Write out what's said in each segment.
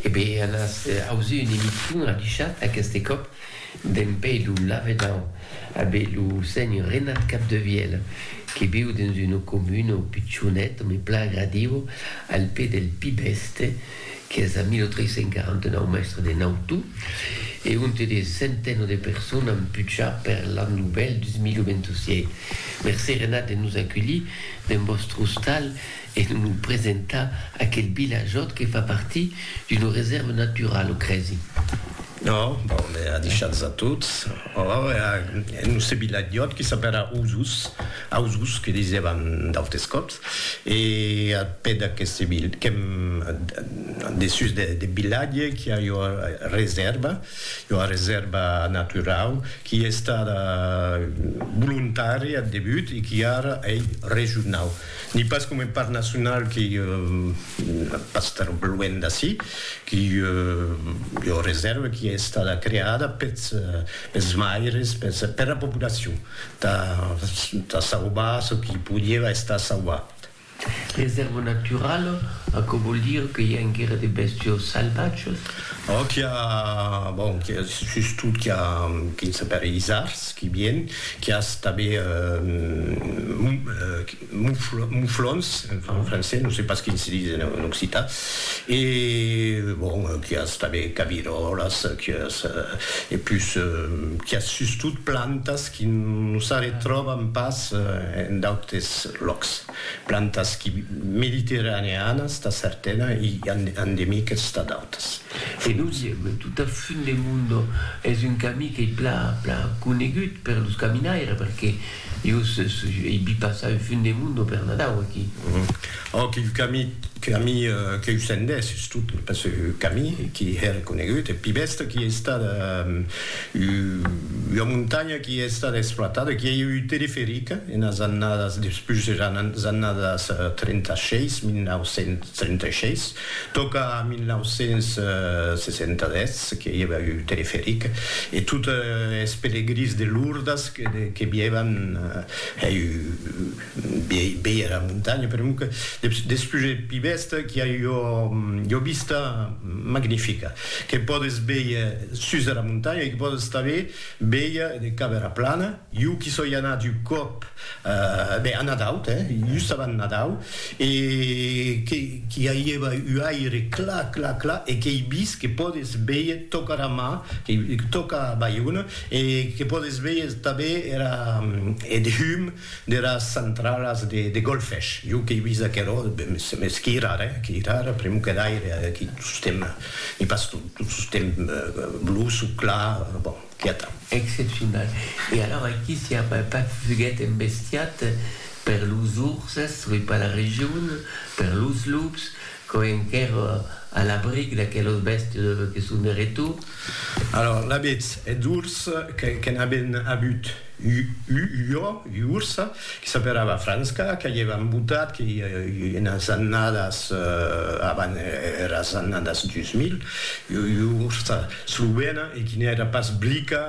E be an as ausi un emission adichat aqueste còp d'en pei lo lavedan a be lo senhor Renat Capdevièl que viu dens una comuna o pichonet me pla agradiu al pè del Pi Bèste qu'es a 1349 mèstre de Nautu e onte de centeno de personas an puchar per l'an novèl 2026. Mercé Renat de nos aculhir dens vòstre ostal. e non lo presentar a aquel vilajòt que fa partir d'una resèrva naturala, o crèsi? No, bon, me a deishats a tots. Ora, ora, e non se vilajòt que s'apèra Osos, Ausos, que disèvan d'autes còps, e al pè d'aqueste vil, que'm, dessús deth vilatge qu'i a ua resèrva, ua resèrva naturau qui ei estada volontària ath debut e qui ara ei regionau. Ni pas coma un parc nacional qui pas tan luènh d'ací, qui ei ua resèrva qui ei estada creada pels maires, per la populacion, tà sauvar çò qui podieva estar sauvat. Resèrva naturala, aquò vòl dire que i a enquera de bèstias salvatjas? Qu'i a, bon, sustot qu'i a, quin sapèri isards, Qui bien, qui as tanben muflons, en francés, non sais pas quin se dis en occitan, e bon, qui as tanben caviròlas, qui as, e pus, qui as sustot plantas qui non s'arretròban pas en d'autes lòcs, plantas qui mediterraneanas tà certena e endemiques tà d'autas. E dosièm, tota Fin del Mundo es un camí qu'ei pla pla conegut per los caminaires perque jos ei vi passar un Fin del Mundo per Nadau aquí. Ò quin camí camí que'u sendés sustot pas su camí qui hèr conegut e pi bèsta qui ei estada ua montanha qui ei estada exploitada qui ei ua teleferica enas annadas despús des annadas 36 1936 Tòca 1960 que i èva un teleferic e totes es pelegrins de Lourdes que vièvan hèi viei era montanha, per non que despús e pi bèsta qu'i a ua vista magnifica que pòdes vier sus era montanha e que pòdes tanben vier de cap era plana. Jo qu'i soi anat un còp Ben, a Nadau, te, just avant Nadau, e qu'i aguièva u aire clar, clar, clar, e qu'ei vist que pòdes véier tòc ara mar, tòc a Baiona, e que pòdes véier tanben era, eth hum deras centralas de Golfech. Jo qu'ei vist aquerò, mès qu'i rara, eh, qu'i rara, pr'amor qu'eth aire, qu'i tostemp, n'i pas tot, tostemp bluç o clar, bon. Quiata. Excepcional. E alors aquí si apa pas fuguet embestiat per los urses, oi pas la region, per los lups, quò enquer a l'abric d'aquelos bèstes que son de retour. Alors l'abetz eth urs que n'aben abut u jo, u urs, que s'aperava Franska, que i èva embotat, que i enas annadas, avan eras annadas 2000, u urs Slovena e quina èra pas blica,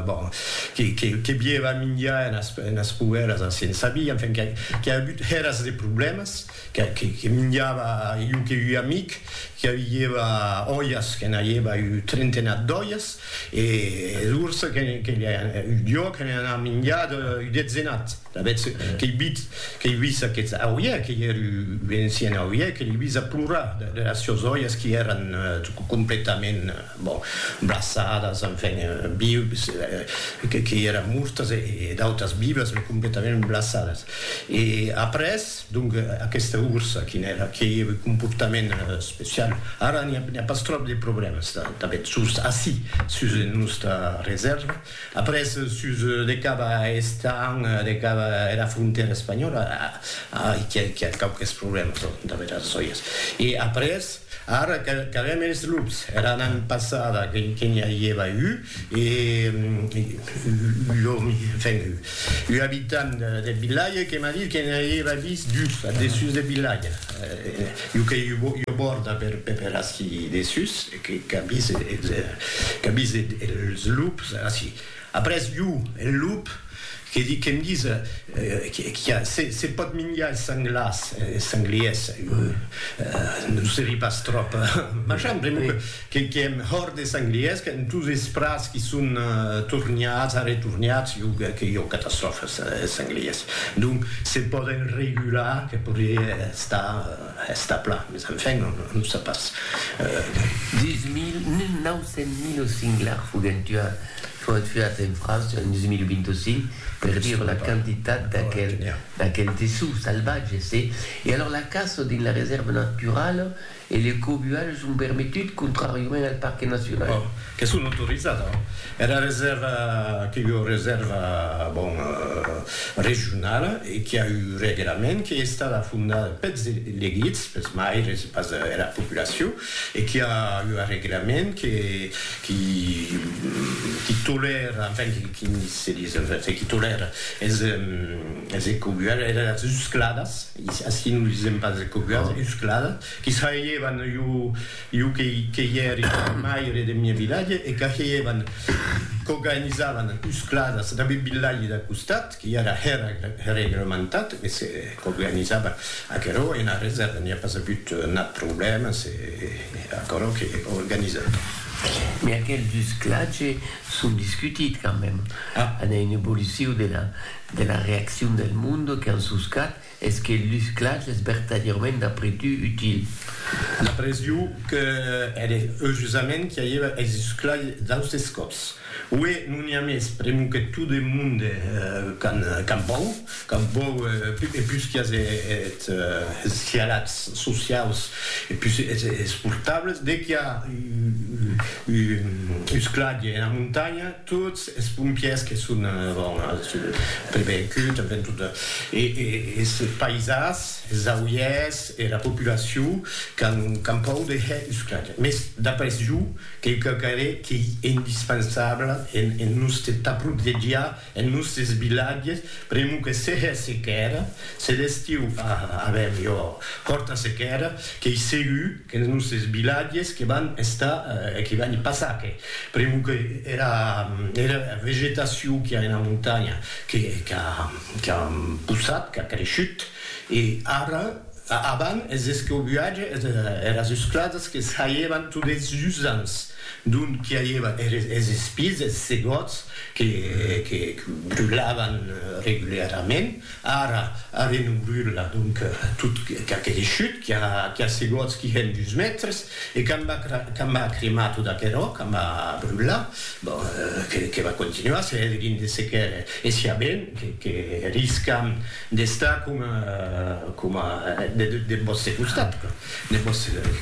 bon, que bieva minjar enas poubèlas, ansi en sabia, enfin, qu'i a agut hèras de problèmas, que minjava iu que ui amic, qu'i avieva òias, que n'aieva iu trentenat d'òias, e es ursa que li a, iu jo, que li a minjat iu detzenat. Avètz qu'ei vit, qu'ei vist aqueth auie, qu'ei er encien auie, que l'ei vist aplorar deras sieus oies qui èran completament, bon, braçadas, enfin, vius, qu'ei era mortas e d'autas vivas, me completament braçadas. E après, donc, aquesta ursa qui n'èra, qui ei er comportament especial, ara n'i a pas tròp de problèmes, tanben, sus ací, sus era nòsta resèrva, Après sus de cap a estant de cap era frontèra espanhòla ai qu'i a quauques problèmas damb es oies e après ara qu'avèm es lups era nan passada que n'i avieva u e u enfin u abitant deth vilatge que m'a dit que n'i avieva vist dus a dessús deth vilatge jo que i ua bòrda per ací dessús. Qu'avise qu'avise es lups ací. Après jo, el lup, que di que'm dise qu'a se se pòt minjar es senglars, es sengliers, non serie pas tròp machan, pr'amor que que que èm hòrt des sengliers, qu'èm tous es prats qui son tornats, arretornats, jo que que jo catastròfa es sengliers. Donc se pòden regular, que podrie estar. Establa, mes enfin, on ne sait pas. Dins 1900 lo singlar foguèt tuat, foguèt tuat en França en 2025, per dire la quantitat d'aquel dessús salvatge, se. E alors la caça dins la resèrva naturala e le cobualh son permetut, contrariament al parque nacional. Qu'es son autorizada. Era resèrva qu'ei ua resèrva, bon, regionala e qu'i a un reglament qu'ei estada fondada peths elegits, peths maires e pas era populacion, e qu'i a ua reglament que qui qui tolèra, enfin, qui se dis, enfin, qui tolèra es es ecobuadas, eras uscladas, ací non disem pas ecobuadas, uscladas, qu'i s'ailhevan ua Iu que i èri maire deth miei vilatge e qu'ageievan, qu'organizavan uscladas dab eth vilatge d'a costat, que i èra regrementat, e se qu'organizava aquerò ena reserva, n'i a pas agut nat problèma, se aquerò qu'ei organizat. Mès aqueth usclatge son discutit quand meme, a n'èi un evoluciu de la reaccion del monde qu'an suscat, Es que lus clachs es vertadièrament d'après tu util? D'après iu, que ère eujusament qu'i aièva es lus clachs d'austes còps. Uè, non i a mès, pr'emu que tot eth monde qu'an vòu, qu'an vòu e pus qu'i as es hialats sociaus e pus es portables, de qu'i a un lus clach ena montanha, Tots es pompièrs que son avèn prevengut avèn tot e es paisans, es auièrs e la populacion qu'an pòu de hèr usclatge. Mès d'après jo, qu'ei quauquarre qu'ei indispensable en nòste tà protegiar es nòstes vilatges, pr'amor que se hèr sequèra, se l'estiu avèm ua hòrta sequèra, qu'ei segur, Que es nosses vilatges que van estar, que van i passar, que pr'amor que era vegetacion qu'i a ena montanha que qu'a possat, qu'a creishut, e ara, avant es escobuatges, eras esclasas que saievan tot es usants d'ont qu'i aieva es espises, es segòts que brulavan regularament. Ara, ara non brula, donc, tot qu'aquele chut qui a seguots qui hèn dus mètres, e qu'a m'a cremar tot aquerò, qu'a m'a brular, bon, que va continuar, se hèt gin de sequèr, e siá ben que riscam d'estar coma deth vòste costat,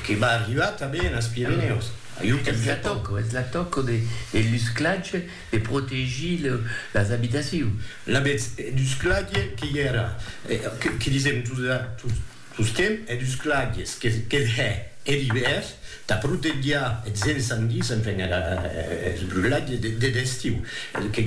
que va arribar tanben as Pirenèus. Ajú que me tòco. Es la tòco de Lusclatge De protegir las abitacions. L'avètz dus clague que i èra, que disèm tostemp, hè dus clagues, que hè er ivèr, tà protegiar eths ensandis, enfin eths brulats deth estiu, que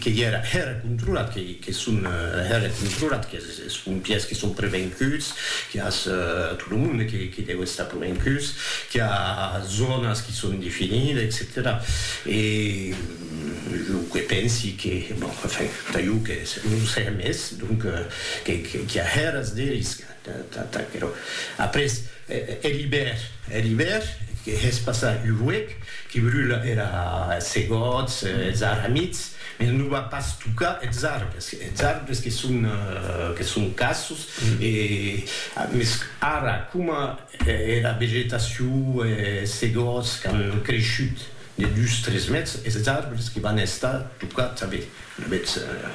i èra, hè era controlat, que son hè era controlat. Es pompièrs que son prevenguts, qu'i a tot lo monde que deu estar prevenguts, qu'i a zònas que son definidas, etcetèra. E lo que pensi que, bon, enfin, tà jo que non o sai amès, donc, qu'i a hèras de risc tà aquerò. Après, hè l'ibèr, hè l'ibèr, que hè's passar un huec, que brula era, es segòts, es arramits, Eth non va pas tocar eths arbres, eths arbres que son que son cassos e mès ara coma era vegetacion e se gòts qu'an creishut de dus tres mètres eths arbres que van estar tocats a vèth a vèth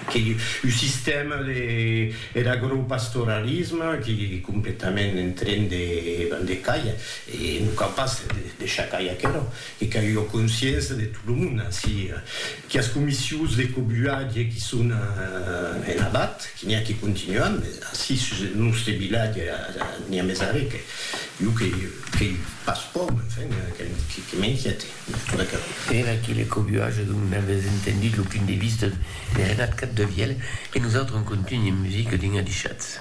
qu'ei un sistèma de er agropastoralisme qu'ei completament en tren de van de cair e non cau pas deishar cair aquerò. E qu'a ua consciença de tot lo monde ansi quias comissions de cobuatge qui son en abat, qui n'i a qui continuan, mes ansi sus eth nòste vilatge n'i a mes arrè que jo que qu'ei pas pòur, me enfin que m'inquiète de tot aquerò. Per aquele cobuatge dont n'avètz entendut lo punt de vista de Renat Capdevièlh e nosautres en contunh e musica dins Adishatz.